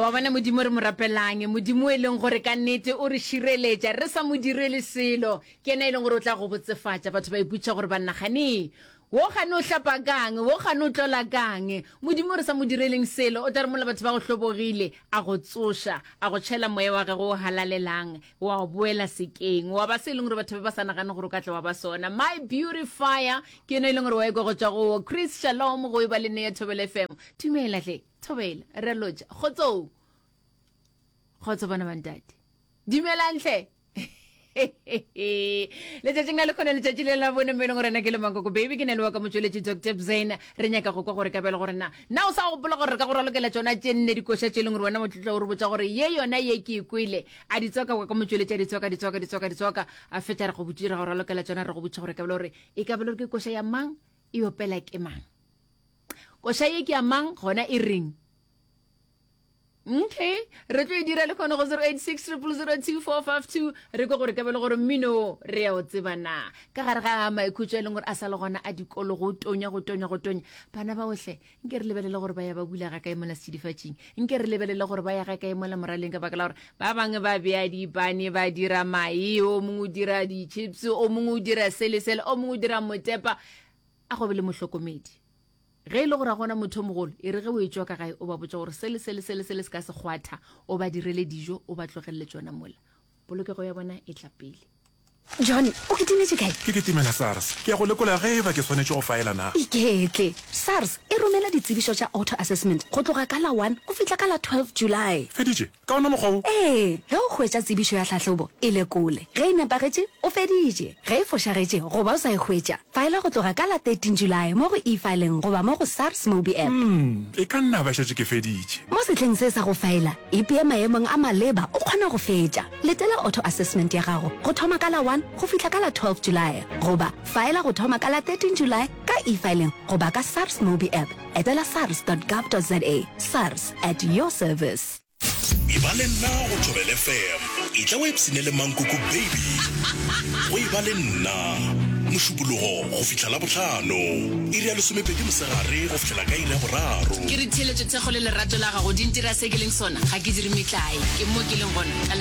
wa bona modimo re mo rapelang modimo o e leng gore ka nnete o re šireletša re sa mo direle selo ke ena e leng gore o tla go botsefatša batho ba iputša gore bannagane wo gane o hlapa kang wo gane o tlola kang modimo re sa mo direleng selo o tla re mola batho ba go hlobogile a go tsoša a go tšhela moya wa gage o halalelang wa o boela sekeng wa ba se e leng gore batho ba ba sa nagane gore o ka tla wa ba sona my beautifier ke ena e leng gore wa ekwa go tswa go chris shalom go e ba le ne ya thobele fm dumela tle Thobela, Rre Lotšha, kgotsong. Kgotso bana ba ntate. Dumelang hle. letšatšing la lekgone letšatši le la bone mo e leng gore na ke le mankoko baby ke na le wa ka motšweletši dr bzena re nyaka go kwa gore ka bjale gore na na o sa gopola gore re ka go ralokela tsona tše nne dikoša tše e leng gore wena motlotla o re botsa gore ye yona ye ke e kwele a di tswaka kwa ka motšweletši a di tswaka di tswaka di tswaka di tswaka a fetša re go botši re go ralokela tsona re go botša gore ka bjale gore e ka bjale gore ke koša ya mang e opela ke mang koša ye ke ya mang gona e reng okay re tlo e dira le kgone go 086 002 re kwe gore ka bele gore mmino re ya o tseba na ka gare ga maikhutso e leng gore a sa le gona a dikolo go tonya go tonya go tonya bana ba otlhe nke re lebelele gore ba ya ba bula ga kae mola sedifatsing nke re lebelele gore ba ya ga kae mola moraleng ka baka la gore ba bangwe ba beya dipane ba dira mae o mongwe o dira di-chips o mongwe o dira sele sele o mongwe o dira motepa A go be le mohlokomedi. Ge e le gore a gona motho o mogolo, e re ge o e tšoka gae o ba botša gore se le se le se le se le se ka se kgwatha, o ba direle dijo, o ba tlogelele tšona mola. Polokego ya bona e tla pele. John, o kitimetše kae? Ke kitimela SARS. Ke ya go lekola ge e ba ke swanetše go faela na. Iketle. SARS e romela ditsebišo tša auto-assessment go tloga ka la one go fihla ka la twelve July. Feditše? Ka wona mokgwa wo. Ee, ge o hwetša tsebišo ya tlhahlobo, e lekole. Ge e nepagetše, o feditše. Ge e fošagetše goba o sa e hwetša, faela go tloga ka la 13 Julae mo go E-Filing goba mo go SARS Mobi App. Umm, e ka nna ba šetše ke feditše. Mo sehleng se sa go faela, ipea maemong a maleba o kgona go fetša. Letela auto assessment ya gago go thoma ka la 1 go fihla ka la 12 Julae goba faela go thoma ka la 13 Julae ka E-Filing goba ka SARS Mobi App. Etela sars.gov.za, SARS, at your service. e ba le nna go thobele fm e tla o epsene le mankoko baby go e ba le nna mošupologo go fihla la botlhano iri ya lesomepedi mosegare go fihlela ka iri ya boraro ke re theeletšo thekgo le lerato la gago di ntira se ke leng sona ga ke dire metlae ke mo ke leng gona ka lebaka